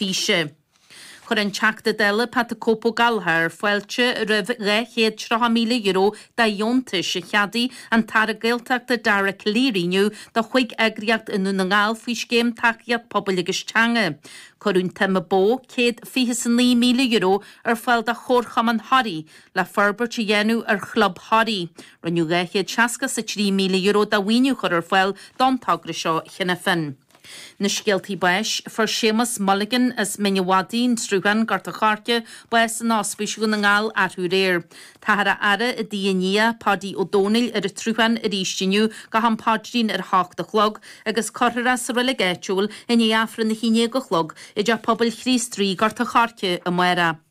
físe. Chuir an Teachta Dála Pat 'The Cope' Ó Gallchóir fáilte roimh €230,000 de dheontais a cheadaigh an tAire Gaeltachta Dara Calleary inniu do chúig eagraíocht i nDún na nGall faoi Scéim Tacaíocht Pobail agus Teanga. Cuireadh an tsuim ba mhó €129,000 ar fáil do Chomharchumann Thoraí le forbairt a dhéanamh ar Chlub Thoraí. Rinneadh €263,000 de mhaoiniú a chur ar fáil don togra seo cheana féin. Na Scéaltaí Báis, Fuair Séamas Mulligan as Mín a' Mhadaidh, An Sruthán, Gort an Choirce, bás in Ospís Dhún na nGall arú aréir. Táthar á fhaire i dtigh a nia, Páidí Ó Dónaill, ar an tSruthán arís inniu go ham paidrín ar a hocht a chlog, agus cuirfear é sa reilig áitiúil i ndiaidh Aifreann a haon déag a chlog i dTeach Pobail Chríost Rí, Gort an Choirce, amárach.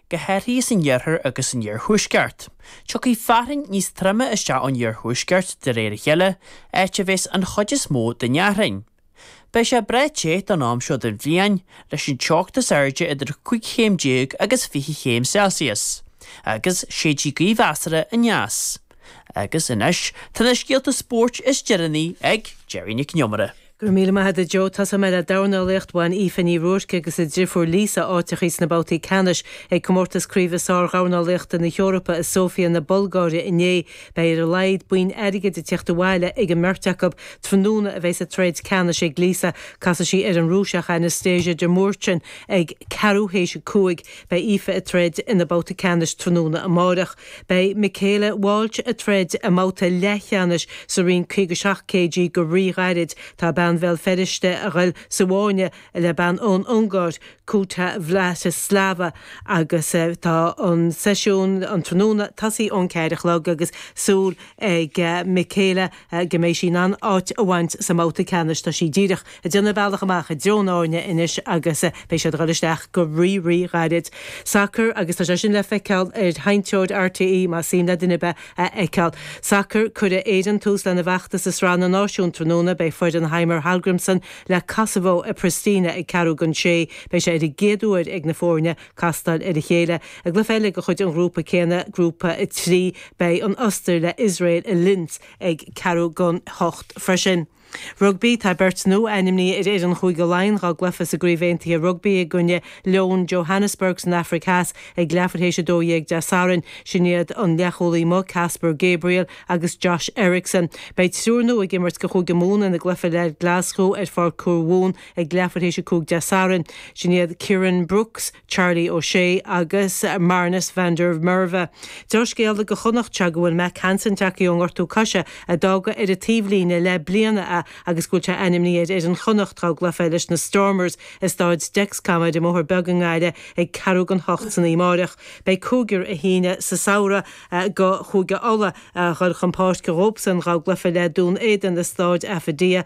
go háirithe san iarthar agus san iarthuaisceart. Tiocfaidh fearthainn níos troime isteach ón iarthuaisceart de réir a chéile, áit a bheas an chuid is mó den fhearthainn. Beidh sé breá te don am seo den bhliain, leis an teocht is airde idir cúig chéim déag agus fiche chéim Celsius, agus séidfidh gaoth mheasartha aneas. Agus anois tá na scéalta spóirt is deireanaí ag Gerry Nic an Iomaire. Go raibh míle maith agat a Joe. Tosóidh mé le dornálaíocht. Bhain Aoife Ní Ruairc agus a driofúr Lisa áiteachaí sna babhtaí ceannais ag Comórtas Craoibhe Sár-Dhornálaíochta na hEorpa i Sóifia na Bulgáire inné. Beidh ar a laghad boinn airgid ag tiocht abhaile ag an mbeirt acu. Tráthnóna a bheas an troid ceannais ag Lisa. Casfaidh sí ar an Rúiseach Anastasia Demurchian ag ceathrú théis a cúig. Beidh Aoife ag troid ina babhta ceannais tráthnóna amáireach. Beidh Michaela Walsh ag troid i mbabhta leathcheannais sa roinn 57 kg go rí-ghairid. Tá bean Bhéal Feirste a ghoil sa bhfáinne le bean ón Ungáir, Kukhta Vladislava, agus tá an seisiún an tráthnóna tosaithe ón ceathair a chlog agus súil ag Michaela, go mbeidh sí in ann áit a bhaint sa mbabhta ceannais, tá sí díreach ag déanamh bealach amach i dtreo an fháinne anois agus beidh siad ag dul isteach go rí-rí-ghairid. Sacar agus tá sé sin le feiceáil ar sheinnteoir RTÉ, más suim le duine ar bith a fheiceáil. Sacar, Cuirfidh Éirinn tús lena bhfeachtas i Sraith na Náisiún tráthnóna, beidh foireann Heimir Hallgrímsson le Kosovo i Pristina ag ceathrú don sé, beidh sé ar an gcéad uair ag na foirne castáil ar a chéile. I gcluiche eile de chuid an ghrúpa céanna, Grúpa 3, beidh an Ostair le Iosrael i Linz ag ceathrú don hocht freisin. Rugbaí Tá beirt nua ainmnithe ar fhoireann Chúige Laighean dá gcluiche sa gCraobh Aontaithe Rugbaí i gcoinne Leoin Johannesburg san Afraic Theas ag leathuair théis 12 Dé Sathairn. Sin iad an leathchúlaí amuigh Caspar Gabriel agus Josh Ericson. Beidh triúr nua ag imirt do Chúige Mumhan ina gcluiche le Glasgow ar Pháirc Thuamhumhan Ag leathuair théis 5 Dé Sathairn, sin iad Kieran Brookes, Charlie O'Shea agus Marnus van der Merwe. Dea-scéala do Chonnachta go bhfuil Mack Hansen tagthaí ón ngortú coise, a d'fhága ar an taobhlíne le leath bliana é agus go bhfuil sé ainmnithe ar fhoireann Chonnacht dhá gcluiche leis na Stormers i Staid Dexcom ar an mBóthar Beag i nGaillimh ag ceathrú don hocht san oíche amárach. Beidh cúigear a shínigh sa samhradh do Chúige Uladh ag dul chun páirce dhóibhsean dhá gcluiche le Dún Éideann i Staid Affidea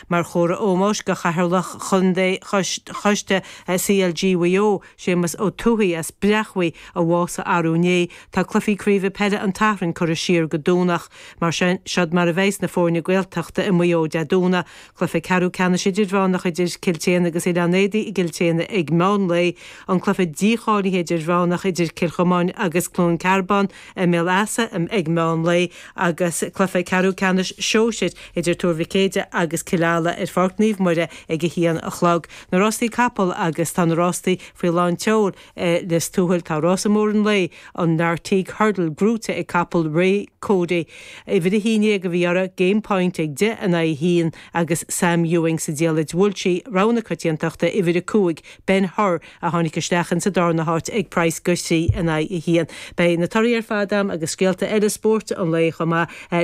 Mar chomhartha ómóis do Chathaoirleach Chontae Choiste CLG Mhaigh Eo, Séamus Ó Tuathaigh as Bréachmhaigh, a bhásaigh arú inné, tá cluichí craoibhe peile an tSathairn curtha siar go Domhnach. Mar sin, siod mar a bheidhs na foirne Gaeltachta i Maigh Eo Dé Domhnaigh, cluiche ceathrú ceannais idirmheánach idir Cill tSéadhna agus Oileán Éadaí i gCill tSéadhna ag meán lae, an cluiche dícháilithe idirmheánach idir Cill Chomáin agus Cluain Cearbán, I mBéal Easa ag meán lae agus Cluiche Ceathrú Ceannais Sóisir idir Tuar Mhic Éadaigh agus Cill Ala ar Pháirc Naomh Muire ag a haon a chlog. Na Rástaí Capall agus Tá na Rástaí faoi lán tseoil i Lios Tuathail. Tá Rása Mór an Lae, an Lartigue Hurdle, gnóite ag capall Ray Cody. Uimhir 11 a bhí uirthi, Game Point ag deich in aghaidh a haon agus Sam Ewing sa diallait. Bhuail sí rogha na coitiantachta, uimhir 5, Ben Hur, a tháinig isteach in sa darna háit ag praghas a trí in aghaidh a haon. Beidh na torthaí ar fad agam agus scéalta eile spóirt an lae chomh maith le